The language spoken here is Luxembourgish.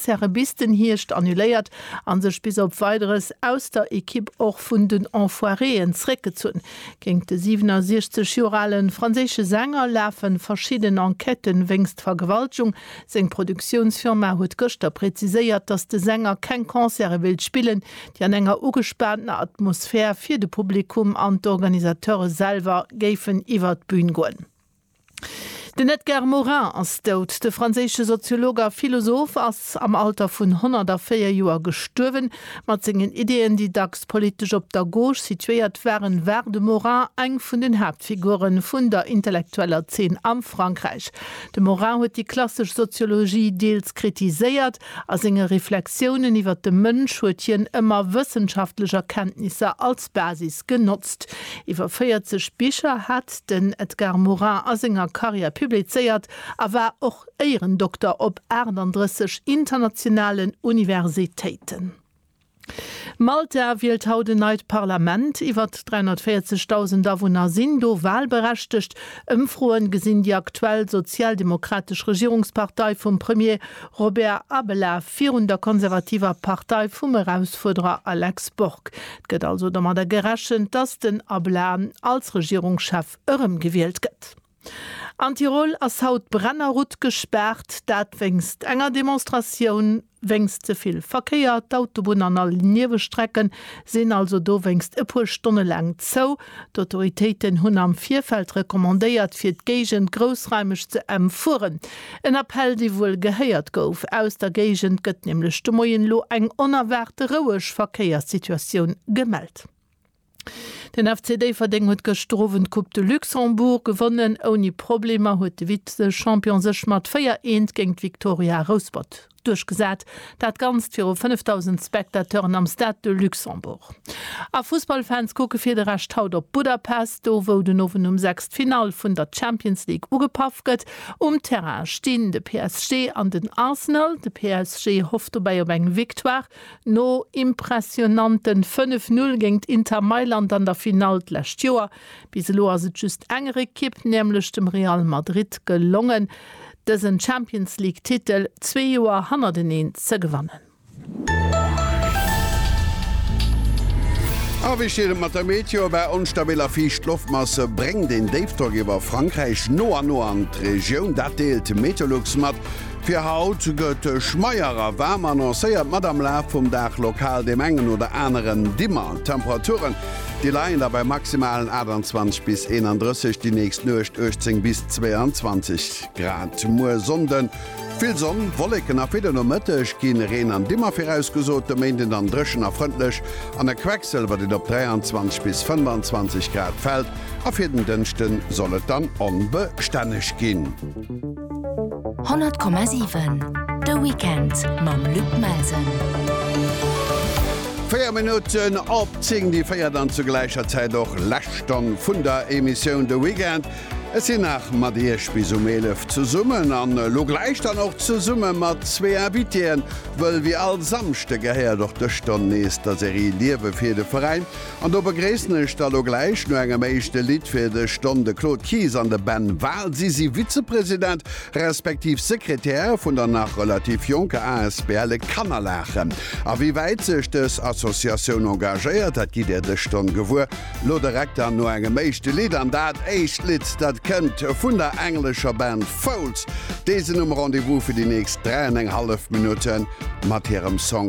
Serebisten Hierscht annuléiert a sech bis op Weideres aus der Ekipp och vun den Enfoiréen zréckgezunn. Géint de 67 Joer ale franséische Sänger lafe verschidden Enquête wéinst Vergewaltegung. Seng Produktiounsfirma huet gëschter präziséiert, datt de Sänger keng Concerte wéilt spillen, déi an enger ugespaantener Atmosphär fir de Publikum an d'Organisateure selwer géifen iwwer d'Bün goen. Den Edgar Morin ass dout. De franséische Soziolog a Philosoph ass am Alter vun 104 Joer gestuerwen. Mat sengen Ideeën, déi dacks politesch op der Gauche situéiert waren, war de Morin eng vun den Haaptfigure vun der intellektueller Zeen am Frankräich. De Morin huet déi klassesch Soziologie deels kritiséiert, A senge Reflexiounen iwwer de Mënsch huet hien ëmmer wëssenschaftlech Erkenntnisser als Basis genotzt. Iwwer 40 Bicher hat den Edgar Morin a senger Karriär publizéiert a war och Éierendokter op 38 internationalen Universitéiten. Malta wielt haut en neit Parlament. Iwwert 340.000 Awunner sinn do walberechtegt. Ëmfroe gesinn déi aktuell sozialdemokratesch Regierungspartei vum Premier Robert Abela virun der konservativer Partei vum Erausfuerderer Alex Borg. Et gëtt also domadder gerechent, datt den Abela als Regierungschef erëmgewielt gëtt. An Tirol ass haut d'Brennerrutt gespaart, dat wéinst enger Demonstratioun. Wéinst ze vill Verkéier, d'Autobunn an all Niewestrecke sinn also dowéinst e puer Stonne laang zou. D'Autoritéiten hunn am Virfeld recommandéiert, fir d'Géigend groussraimeg ze emfueren. En Appell, dee wuel gehéiert gouf. Aus der Géigend gëtt nämlech de Moien elo eng onerwaarte roueg Verkéierssituatioun gemellt. Den FC Déifferdeng huet gëschter Owend d'Coupe de Luxembourg gewonnen. Ouni Problemer huet de Vize-Champion sech mat 4, 1 géint d'Victoria Rouspert duerchgesat. Dat Ganzt viru 5.000 Spectateuren am Stade de Luxembourg. A Fussballfans kucke fir de Rescht haut op Budapest, do wou den Owend um 6 d'Finall vun der Champions League ugepaff gëtt. Um Terrain stinn de PSG an den Arsenal. De PSG hofft dobäi op eng Victoire. No impressionanten 5 Null géingt Inter Mailand an der Finall d'lescht Joer, bis elo ass et just enger Ekipp, nämlech dem Real Madrid gelongen, dësen Champions League Titel zwee Joer hannerteneen ze gewannen. A wéi steet et mat der Meteo? Bei onstabil a fiicht Loftmasse bréngt een Déifdrock iwwer Frankräich no an no an d'Regioun, dat deelt Meteolux mat. Fir haut gëtt Schmeyer a Waarm annoncéiert mat am Laf vum Dag lokal deem engen oder aneren Dimmer. D'Temperaturen, déi leien da bei maximalen 28 bis 31, déi nächst Nuecht 18 bis 22 Grad. Muer Sonnde vill Sonn, Wolleken a fir de Nomëtteg gi Reen an Dimmer virausgesot. De Méinden dann dréchen a frëndlech an e Quecksëlwer, deen op 23 bis 25 Grad fält a fir den Dënschde soll et dann onbestänneg ginn. 100,7 De Weekend mam Luc Melsen. Véier Minutten op zéng, déi véiert an zur gläicher Zäit och lescht Stonn vun der Emissioun De Weekend. Ech sinn nach mat Iech bis um eelef zesummen an elo gläich dann och zesumme mat zwee Invitéen, wëll wéi all Samschde gehéiert och dës Stonn nees der Serie Liewe fir de Veräin. An do begréissen ech da lo gläich no engem éischte Lidd fir dech Don, de Claude Kies an de Ben Wahl. Si si Vizepresident respektiv Sekretär vun der nach relativ jonker asbl E kann a laachen. A wéi wäit sech dës Associatioun engagéiert, dat gitt Dir dës Stonn gewuer. Lo direkt dann no engem éischte Lidd. An dat éischt Lidd, dat kënnt vun der englescher Band Foals. Déi sinn um Rendez-vous fir déi nächst dräi an eng hallef Minutte mat hirem Song.